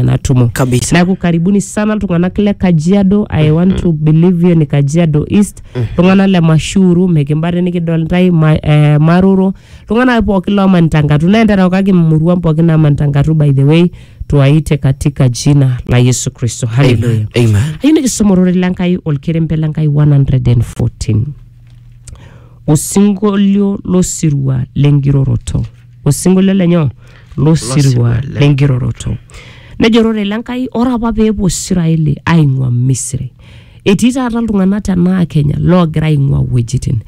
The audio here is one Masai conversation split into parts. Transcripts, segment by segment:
natumo kabisa neaku karibuni sana iltung'anak le kajiado i want to believe you ni kajiado east iltung'anak le mashuru mikimbate nikidol ntae ma, eh, maroro iltung'anak pookin loomanita nkatu naa enterewakaki muruan pookin naamanita nkatu by the way tuaite katika jina la yesu kristo haleluya amen amen ayieu nikisoma ororei lenkai olkerempe lenkai 114 osinkolio losirua lenkiroroto osinkolio lenyo losirua Losirua le- lenkiroroto nejo ororei le Nkai ore apa peepuo Israeli aing'ua Misri etii taata iltung'anak tenaa Kenya loogira aing'ua wuejitin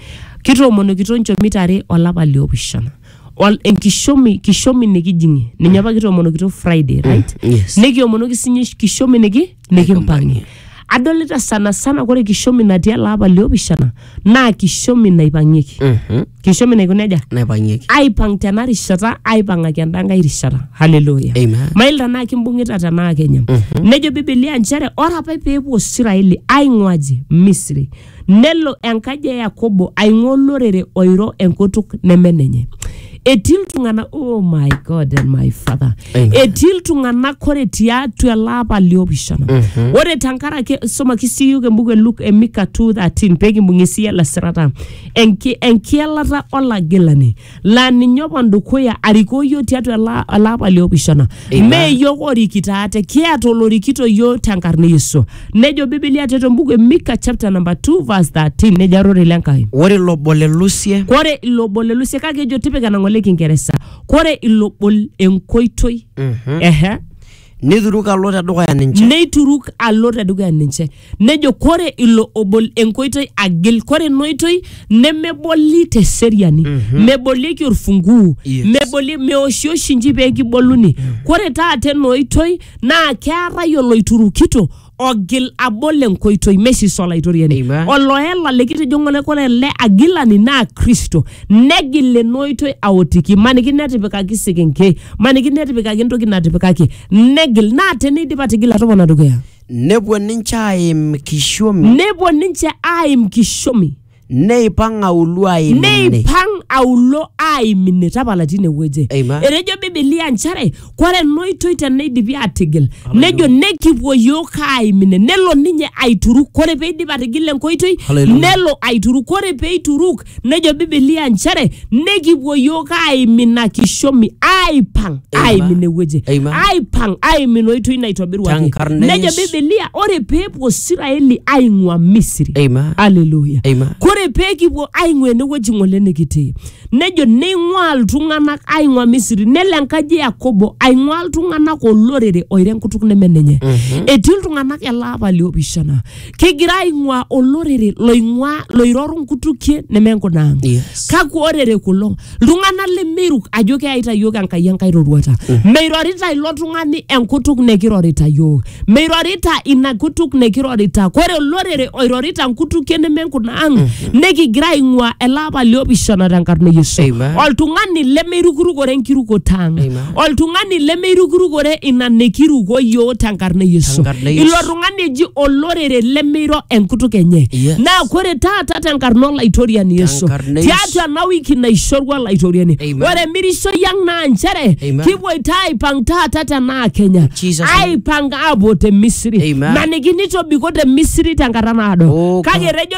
kitoomonokito nchomit are olapa liopishana Ol- enkishomi kishomi nikijing'ie ninye apa kitoomonokito Friday right yes. nikiomonoki sinye kishomi niki nikimpang'ie adolita sana sana kore kishomi natii ele apa liopishana naa kishomi naipang'ieki Mhm. kishomi naiko neja naipang'ieki aipang tena rishata aipang'aki enda nkae rishata haleluya Amen. mail tenaa kimbung'ita tenaa kenya nejo bibilia nchere ore apa peepuo israeli aing'uaji misri Nelo enkaji e Yakobo aing'ua olorere oiro enkutuk neme nenye. Etii iltung'ana, oh my God and my Father. Amen. Etii iltung'ana ore tiatua ele apa liopishana. Ore tenkaraki somaki sii iyiok embuku e Luke e Mika 2:13 pee kimbung'ie sii ele sirata. Enki- Enkielata olagilani. laa ninye opon dukuya arikoo iyiook tiatua ela- ele apa liopishana Amen. mee iyiook orikito ate kiata olorikito iyiook tenkarna e Yesu nejo Biblia tiatua embuku e Mika chapter number 2 verse 13 nejo ororei le Nkai ore ilo obo le lusie kore ilo obo le Lusia kake ejo tipika enang'ole Kingeresa kore ilo obo enkoitoi Mhm. ehe Neituruk alo te dukuya ninche. neituruk alo tedukuya ninche nejo kore ilo obol enkoitoi agil kore ina oitoi nemeboli teseriani mebolieki orfunguu Yes. meboli meoshioshi nji pee kiboluni kore taata ena oitoi naa keetae oloiturukito ogil abol enkoitoi mesiso olaitoriani Eiba. oloela likitijo ng'ole kore ele agilani naa kristo negil ena oitoi aotiki maniki netipikaki sekenkei maniki netipikaki entoki natipikaki negil naa teneidip atigila topona dukuya nepuo ninche aim kishomi nepuo ninche aim kishomi neipang auluo aim ine neipang aulo aim ine tapala tine wueji Amen. etejo bibilia nchere kore enoitoi teneidipi atigil nejo nekipuo yiok aim ine nelo ninye aituruk kore peidip atigila enkoitoi Hallelujah. nelo aituruk kore peituruk nejo bibilia nchere nekipuo yiok aaimin ina kishomi aaipang Amen. aaimin ewueji Amen. aaipang aaimin oitoi naitobiruaki Tenkarna nejo Yesu. bibilia ore peepuo siraeli aing'ua misri Amen. aleluya Amen. kore peekipuo aing'ua enewueji ng'ole nikitii nejo neing'ua iltung'anak aing'ua misri nelo enkaji e yakobo aing'ua iltung'anak olorere oiro enkutuk neme ninye etii iltung'anak ele apa liopishana kigira aing'ua olorere loing'ua loiroru nkutukie nemenkunaang Yes. kakwa orere kulo iltung'anak lemeiruk ajo keyaita yiok enkai enkai roruata meirorita ilo tung'ani enkutuk nekirorita yiok meirorita ina kutuk nekirorita kore olorere oirorita nkutukie nemenkunaang nekigira aing'ua ele apa liopishana tenkarna e yesu Amen. oltung'ani lemeirukurukore enkirukoto ang Amen. oltung'ani lemeirukurukore ina nikiruko yioo tenkarna e yesu Tenkarna e Yesu. ilo tung'ani eji olorere lemeiro enkutuk enye Yes. naa kore taata tenkarna olaitoriani yesu Tenkarna e Yesu. tiatua ena wiki naishorua olaitoriani Amen. ore emirishoi ang naa nchere Amen. kipuoita aipang taata tenaa kenya Jesus name. aipang aapuo te misiri Amen. maniki nitobiko te misiri tenkata naado Oh, kake God. etejo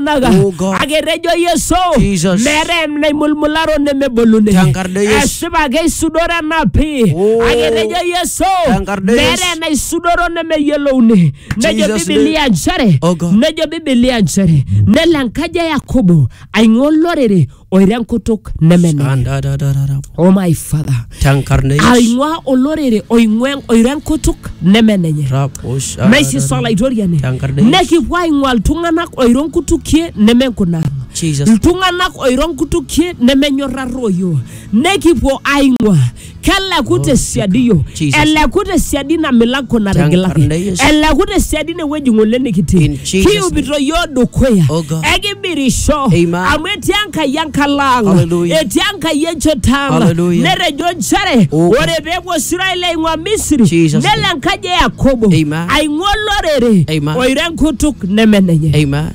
iltung'anak Oh, God. aketejo yesu Jesus. meetae naimulmularo nemeboluni Tenkarna Yesu. esipa ake isudoro ena pii Oh. aketejo yesu Tenkarna Yesu. meetae naisudoro nemeyiolouni nejo Jesus bibilia nchere Oh, God. nejo bibilia nchere nelo enkaji e yakobo aing'ua olorere oiro enkutuk nemenenye Shandadadadada. oh my father Tankarneish. aing'ua olorere oing'ua oiro enkutuk nemenenye Raposh. naisisa olaitoriani Tankarneish. nekipuo aing'ua iltung'anak oiro nkutukie nemenkunang Jesus. iltung'anak oiro nkutukie nemenyorraroyo nekipuo aing'ua keleku te siadi iyiook Jesus. eleku te siadi ina milango natigilaki Tenkarna Yesu. eleku te siadi ine wueji ng'ole nikitii In Jesus' kiupito iyiook dukuya Oh God. ekimirisho Amen. amu etii enkai enkalo ang Hallelujah. etii enkai enchoto ang Hallelujah. netejo nchere Oh God. ore peepuo Israel aing'ua Misri Jesus' nelo name. enkaji e Yakobo Amen. aing'ua olorere Amen. oiro enkutuk neme nenye Amen.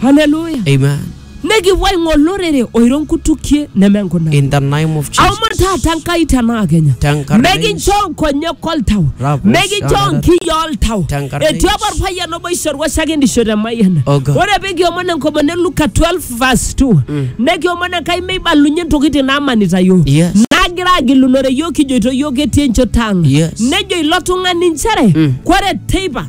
haleluya Amen. Nikipuo aing'o olorere oiro nkutukie neme nkuna. In the name of Amu Jesus. taata Enkai tenaa Kenya. Tenkarna Mekincho nkonyek oltau. Rabu Mekincho shanara. nkiyi oltau. Tenkarna Etii apa Yesu. orpayian obo oishorua shakendisho te Mayiana. Oh God. Ore pee kiomon enkomono e Luka 12 verse 2. Nekiomon Enkai meibalunye ntokitin naamanita iyiook. Yes. Nagira agilunore iyiook kijoito iyiook etii enchoto ang. Yes. Nejo ilo tung'ani nchere kore teipa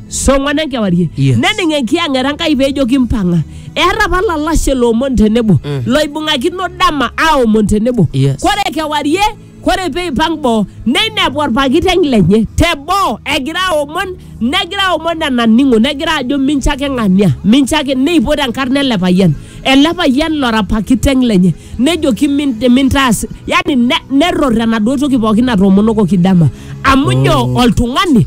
song'wan enkewarie Yes. nening enkiyang'et enkai peejoki mpang'a eeta apa lalashe loomon tenebo Mm. loibung'akino dama aomon tenebo Yes. kore kewarie kore peipang boo neinepu olpakiteng lenye te boo egira aomon negira aomon enaning'o negira ajo mincho ake ng'ania mincho ake neipot enkarna ele payian ele payian lora pakiteng lenye nejoki "Min- mintaas yani ne- nerror enaduo toki pookin natoomonokoki dama amu nyoo oltung'ani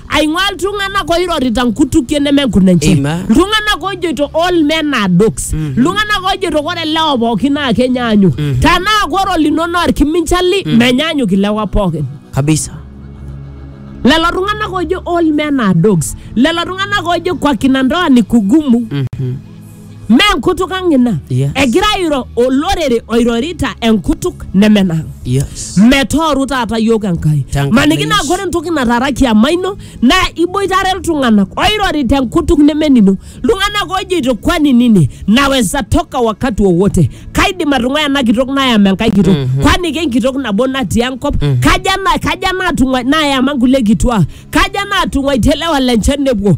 aing'ua iltung'anak oirorita nkutukie neme nkunenche Amen. iltung'anak ojoito all men are dogs iltung'anak ojoito kore lewa pookin naa kenyaanyuk tanaa kore olino naa orkiminchali menyaanyuk ilewa pookin kabisa lelo tung'anak ojo all men are dogs lelo tung'anak ojo kwa kina ndoa ni kugumu Mme enkutuk ang' ina. Yes. Egira airo olorere oirorita enkutuk nemenang'. Yes. metooru taata yiok enkai Tenkalo maniki naa Yesu. ore entoki nataara kiama ino naa iboitare iltung'anak oirori tenkutuk nemenino iltung'anak ojoito kwani nini naweza toka wakati wowote kaidim atung'ua ena kitok nayam enkai kitok kwani kenkitok nabo natii enkop kaja na- kaja natung'ua nayama nkulie kituaa kaja natung'uaitie lewa lenche nepuo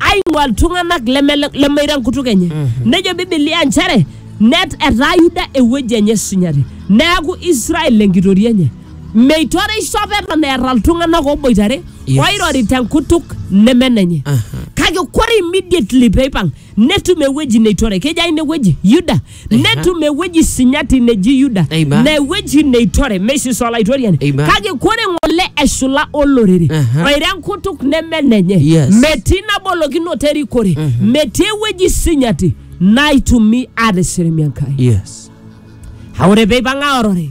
aing'ua iltung'anak leme lemeiro enkutuk enye nejo bibilia nchere net etaa yuda ewueji enye esunyati neaku israel enkitoria enye meitoreisho apa eton eeta iltung'anak oboitare Yes. oirori tenkutuk neme nenye Aha. kake kore immediately peipang netum ewueji neitore keji aina ewueji yuda netum ewueji sinyati neji yuda Amen. na ewueji neitore meishiso olaitoriani Amen. kake kore ng'ole eshula olorere Aha. oiro enkutuk neme nenye Yes. metii nabolokinoto erikore metii ewueji sinyati naitumi atisirimi enkai yes ore peipang'a orore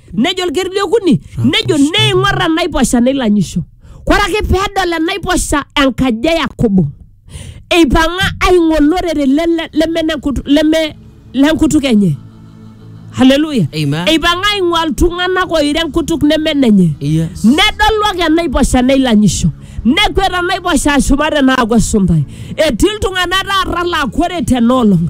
nejo olker le okuni nejo neing'or enaiposha neilanyisho kore ake peedol enaiposha enkaji e yakobo eipang'a aing'o olorere le- le- leme nenkutu- leme lenkutuk enye haleluya Amen. eipang'a aing'ua iltung'anak oiro enkutuk neme nenye Yes. nedolu ake enaiposha neilanyisho nekwet enaiposha ashumare naaku esuntai etii iltung'anak taata laa kore tenaolong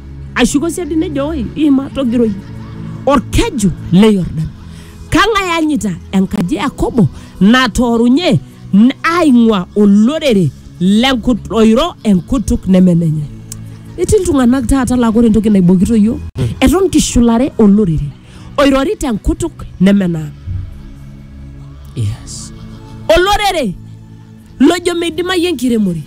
Ashuko siadi nejo, Oi, iima togiroi olkeju le Yordan. Kang'ae eanyita enkaji e Yakobo natoorunye n- aaing'ua olorere lenkut oiro enkutuk neme nenye? Etii iltung'anak taata laa ore entoki naibokito iyiook, eton kishulare olorere oirorita enkutuk neme naa. Yes. Olorere lojo meidimayu enkiremore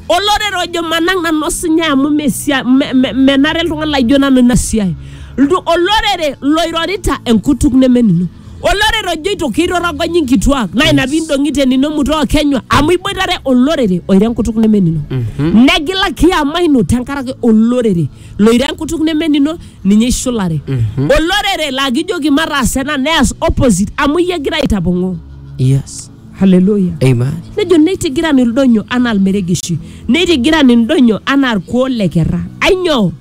olorere ojo manang nanu osinyai amu mesia- me- me- menare iltung'anak laijo nanu ina siai Ltu- olorere loirorita enkutuk nemenino olorere ojoito keirorogonyi nkituak naa ina pindong'ite nino mutoo kenywa amu iboitare olorere oiro enkutuk nemenino negila kiama ino tenkaraki olorere loiro enkutuk nemenino ninye ishulare olorere laa kijoki mataas ena neas opposite amu iyie egira aitapong'oo yes Haleluya. Amen. Nejo neitigiran ildonyo anaa ilmeregeshi, neitigiran indonyo anaa ilkuoo le kerra. Ainyoo?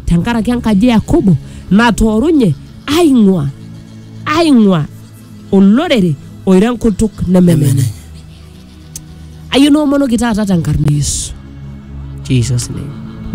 Tenkaraki enkaji e Yakobo natoorunye aing'ua aing'ua olorere oiro enkutuk neme Neme menye. Ayieu niomonoki taata tenkarna e Yesu. Jesus name.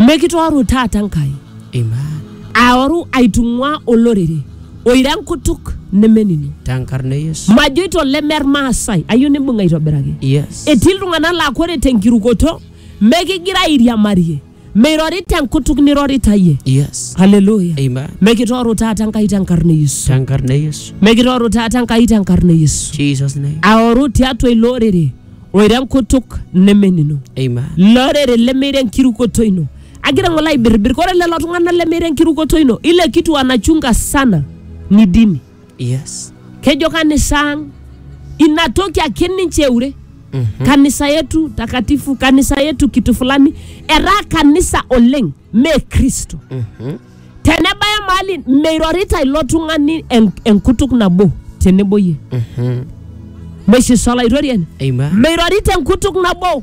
Mekitooru taata Enkai. Amen. aoru aitung'ua olorere Oiro enkutuk nemening. Tenkarna e Yesu. Majoito leme Irmaasai, ayieu nimbung'a aitobiraki. Yes. Etii iltung'anak laa kore tenkirukoto mekigira airiamarie, mirorita enkutuk nirorita iyie. Yes. Haleluya. Amen. Mekitooru taata Enkai tenkarna e Yesu. Tenkarna e Yesu. Mekitooru taata Enkai tenkarna e Yesu. Jesus name. Aoru tiatua ilo orere oiro enkutuk nemenino. Amen. Ilo orere lemeiro enkirukoto ino. agira ng'ole aibirribir kore lelo tung'anak lemeiro enkirukoto ino ile kitu anachunga sana ni dini Yes. kejo kanisa ang ina toki ake ninche eure Mhm. kanisa yetu takatifu kanisa yetu kitu fulani etaa kanisa oleng me kristo Mhm. tenebaya mahali meirorita ilo tung'ani en- enkutuk nabo tenebo yie Mhm. meshisolaitorie Amen. meirorita enkutuk nabo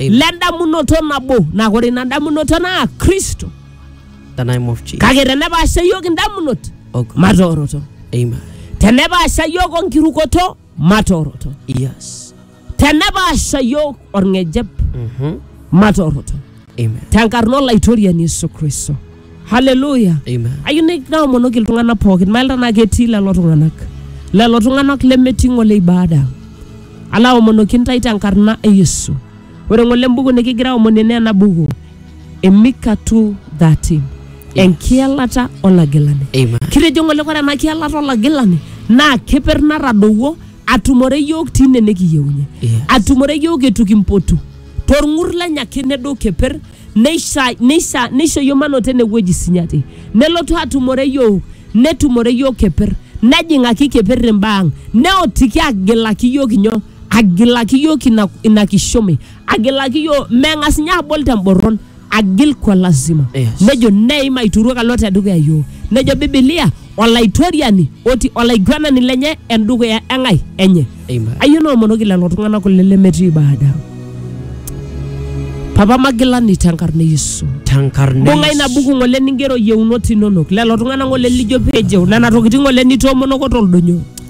Amen. le ndamunoto nabo naa kore ina damunoto naa kristo The name of Jesus. kake tenepaasha yiok indamunot Oh God. matooroto Amen. tenepaasha yiok onkirukoto matooroto Yes. tenepaasha yiok orng'ejep Mm-hmm. matooroto Amen. tenkarna olaitoriani yesu kristo haleluya Amen. ayieu ni- naomonoki iltung'anak pookin mailta naa ketii lelo tung'anak lelo tung'anak lemetii ng'ole ibada ala aomonoki ntae tenkarna e yesu ore ng'ole embuku nikigira aomonie naa ena buku emika 230 enkielata olagilani Amen. kitejo ng'ole kore ena kielata olagilani naa keper natadowuo atumore yiok tine nikiyeunye Yes. atumore yiok etu kimpotu torng'ur lenye ake nedou keper neisha- neisha- neishoyio mano tene wueji sinyati nelotu atumore yiok netumore yiok keper nejing'aki keper imbaa ang neotiki agilaki yiok inyo agilaki yiok ina, ina kishomi agilaki yiok meng'as ninye abol temborron agil kwa lazima Yes. nejo neim aituruok alo tedukuya yiok nejo bibilia olaitoriani oti olaiguanani lenye endukuya eng'ai enye Amen. ayie noomonoki lelo tung'anak kule lemetii ibada papa magilani tenkarna e yesu Tenkarna bunga Yesu. ina buku ng'ole ningero yieunot inonok lelo tung'anak ng'ole lijo peejeu nena tokitin ng'ole nitoomonoko toldonyo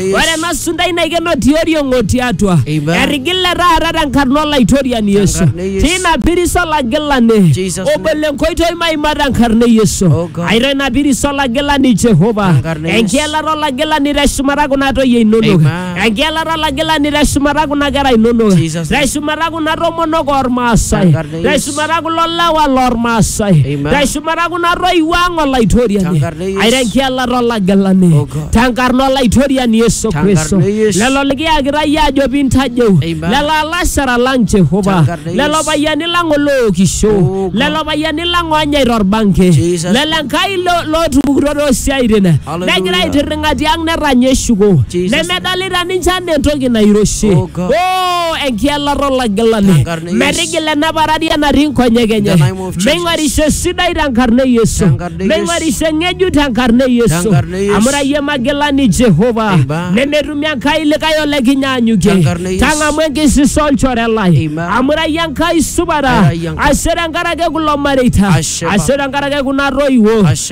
Ore ena sundai naikeno tioriong o tiatua. Amen. Etigile taata tenkarna Olaitoriani Yesu. Tenkarna e Yesu. Tina piris olagilani. Jesus name. Obol enkoitoi maima tenkarna e Yesu. Oh God. Airo ina piris olagilani Jehova. Tenkarna e Yesu. Enkielata olagilani teshumata kuna toyie inonok. Amen. Enkielata olagilani teshumata kuna kera inonok. Jesus name. Teshumata kuna tomonok ormaasai. Tenkarna Taisumata kulo lewa lormaasai. Amen. Taisumata kuna toiwuo ang olaitoriani. Tenkarna e Yesu. Aira enkialata olagelani. Oh God. Tenkarna olaitoriani Yesu Tenkarna Kristo. e Yesu. Lelo likiyakita iyie ajo pintajeu. Amen. Lelo alashara lang Jehova. Tenkarna e Lelo Yesu. payiani lang olookisho. Oh God. Lelo payiani lang onyaita orbanke. Jesus. Lelo Enkai lo- lootupukutuo toosiaitin. Hallelujah. negira aitirring'a tiang' netanya eshuko Jesus. nemedolita ninche anaa entoki nairoshi Oh, God. o enkielata olagilani Tenkarna e Yesu. metigila ena pararia natii nkonyek enye the name of Jesus. meing'orisho sidai tenkarna e yesu Tenkarna e Yesu. meing'orisho ng'ejuk tenkarna e yesu Tenkarna e Yesu. amu rayie magilani jehova Amen. nemetumi enkai likae olekinyaanyukie Tenkarna e Yesu. tang'amu enkisisa olchore lai Amen. amu rayie enkai supata Era yie Enkai. ashe tenkaraki kulo mareita Ashe, Papa. ashe tenkaraki kuna toiwuo Ashe.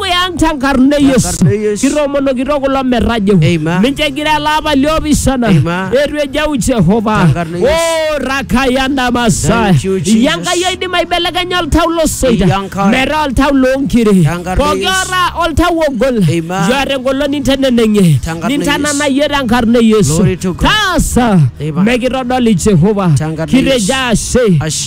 dukuya ang tenkarna e Yesu. Tenkarna e Yesu. Kitoomonokito kulo merrajeho. Amen. Mincho egira ele apa liopishana. Amen. Eitu ejeu Jehova. Tenkarna e Yesu. Oh, rakayanda masaya. Thank you, Jesus. Iya Enkai oidim aibelekenya oltau losoita. Iya Enkai. Metaa oltau loonkiri. Tenkarna e Pooki Yesu. ora oltau ogol. Amen. Jua tengolon ninteneneng'ie. Tenkarna e Yesu. Nintananayie tenkarna e Yesu. Glory to God. Taasa. Amen. Mekitodoli Jehova. Tenkarna e Yesu. Kitejo ashe. Ashe.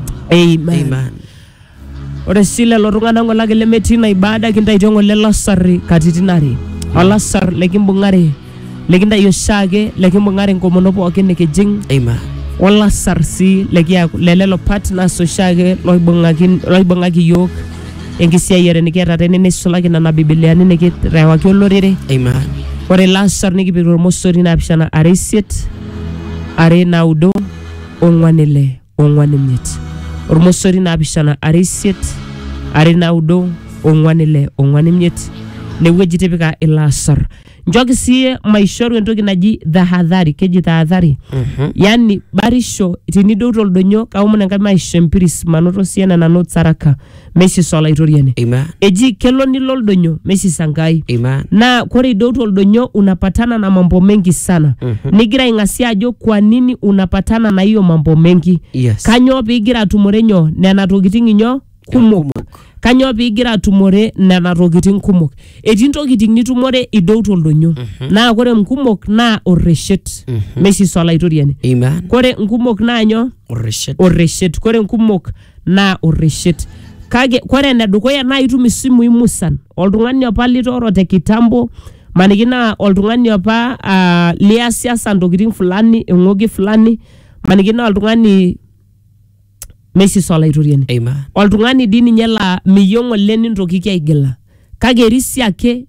Amen. Amen. Ore sii lelo tung'anak ng'olaki lemetii ina ibada kintaitio ng'ole lasarri katitin are. Olasar lekimbung'are lekintai oshiake lekimbung'are enkomono pookin nikijing Amen. olasar sii lekiaku le lelo partners oshiake loibung'aki loibung'aki iyiook enkisiayiare nikiata tene neisulaki nena bibiliani nikirewaki olorere Amen. ore ilo asar nikipik tormosori naapishana are isiet are naudo ong'wan ile ong'wan imiet ormosori naapishana are isiet are naudo ong'wan ile ong'wan imiet inewueji tipika ilo asar nchooki sii maishoru entoki naji tahadhari keji tahadhari yani barisho tinidou toldonyo kaomon enkai maisho empiris manoto sii ena nanu tsaraka meisisa Olaitoriani. Amen. Eji kelo nilo oldonyo meisisa Nkai. Amen. Naa kore idoutu oldonyo unapatana na mambo mengi sana. Nigira aing'asia ajo kwa nini unapatana na hiyo mambo mengi. Yes. Kanyoo piigira atumore nyoo? Nena tokitin inyoo? Kumok. Kanyoo piigira atumore nena tokitin kumok? Etii ntokitin nitumore idoutu oldonyo. Naa kore nkumok naa orreshet. Meisisa Olaitoriani. Amen. Kore nkumok naa nyoo? Orreshet. Orreshet. Kore nkumok naa orreshet. Kake kore enedukuya naa itum isimui musan, oltung'ani opa litooro te kitambo, maniki naa oltung'ani opa ah liasiasa ntokiting fulani, eng'oki fulani, maniki naa oltung'ani meisisa Olaitoriani. Amen. Oltung'ani dii ninye laa miyieu ng'ole nintokiki aigila. Kake irisi ake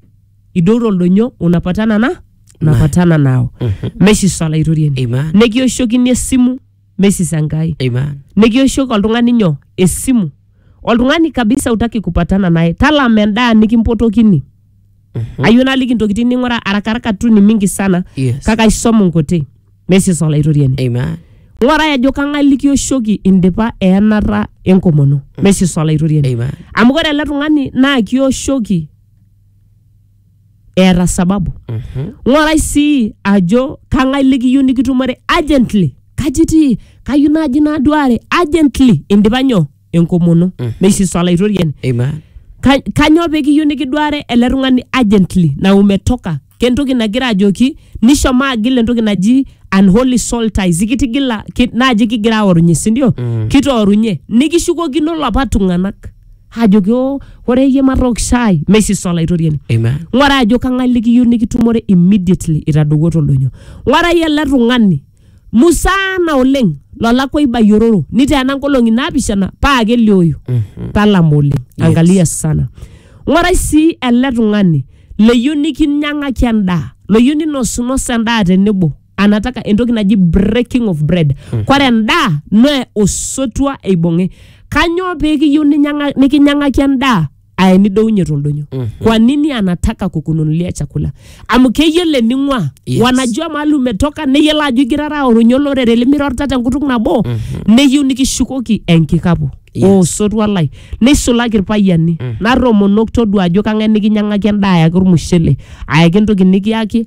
idotu oldonyo unapatana na unapatana nao. Meisisa Olaitoriani. Amen. Nikiwoshokini esimu. mesis enkai Amen. nikioshoki oltung'ani nyoo esimu oltung'ani kabisa utaki kupatana naye talama endaa nikimpotokini Mhm. ayieu naliki intokitin ning'ura arakaraka tu ni mingi sana Yes. kake aisom nkuti mesis olaitoriani Amen. ng'orai ajo kang'ae likioshoki indipa eenata enkomono mesis olaitoriani Amen. amu ore ele tung'ani naa kioshoki eeta sababu Mhm. ng'orai sii ajo kang'ae likiyieu nikitumore urgently kaji itii kayieu naaji naduare urgently indipa nyoo enkomono meishiso olaitoriani Amen. Ka- kanyoo pekiyieu nikiduare ele tung'ani urgently na umetoka kentoki nagira ajoki nishomo agil entoki naji unholy soul ties ikitigila ki, naaji kigira aorunye sindio mm. kitoorunye nikishukokino lapa tung'anak ajoki o ore iyie matook shai meisisa olaitoriani Amen. ng'ura ajo kang'ae likiyieu nikitumore immediately itadowuo toldoinyo ng'urai ele tung'ani musaana oleng lolakwa ibayiororo niteena nkolong'i naapishana paa kelioyu talama oleng angalia sana ng'urai sii ele tung'ani leyieu nikinyang'aki endaa loyieu ninosunos endaa tenebo anataka entoki naji breaking of bread kore endaa naa osotua eibung'i kanyoo pikiyieu ninyang'a- nikinyang'aki endaa aa enidounye toldonyo kwa nini anataka kukununulia chakula amu keyiolo ening'ua Yes. wanajua mahali umetoka neyiolo ajo igirara aorunye olorere limirorita tenkutuk nabo neyieu nikishukoki enkikapu Yes. oo osotua lai neisulaki irpayiani narromonok todua ajo kang'ae nikinyang'aki endaa ayaki ormushele ayaki entoki nikiyaki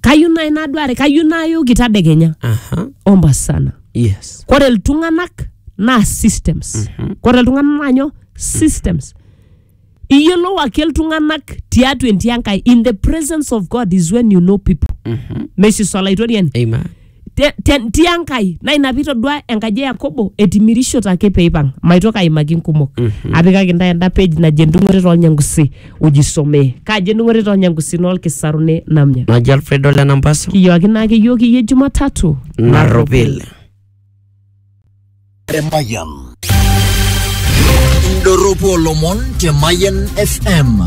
kayieu nai naduare kayieu nayoki tadekenya aha omba sana yes kore iltung'anak naa systems kore iltung'anak naa nyoo systems iyiolou ake iltung'anak tiatua entii enkai in the presence of god is when you know people meshiso olaitoriani amen te, te, tia nkai na ina pitodua enkaji e yakobo etimirishote ake peipang maitoki aimaki nkumok apikaki ntae enda page naji endung'ore tolnyangusi ujisomee kaji endung'ore tolnyangusi nolkisarune namnya naji alfredo le nambasu kiyooki naa keyiok iyie jumatatu narropil Emayian. Indorropu olomon te Mayian FM.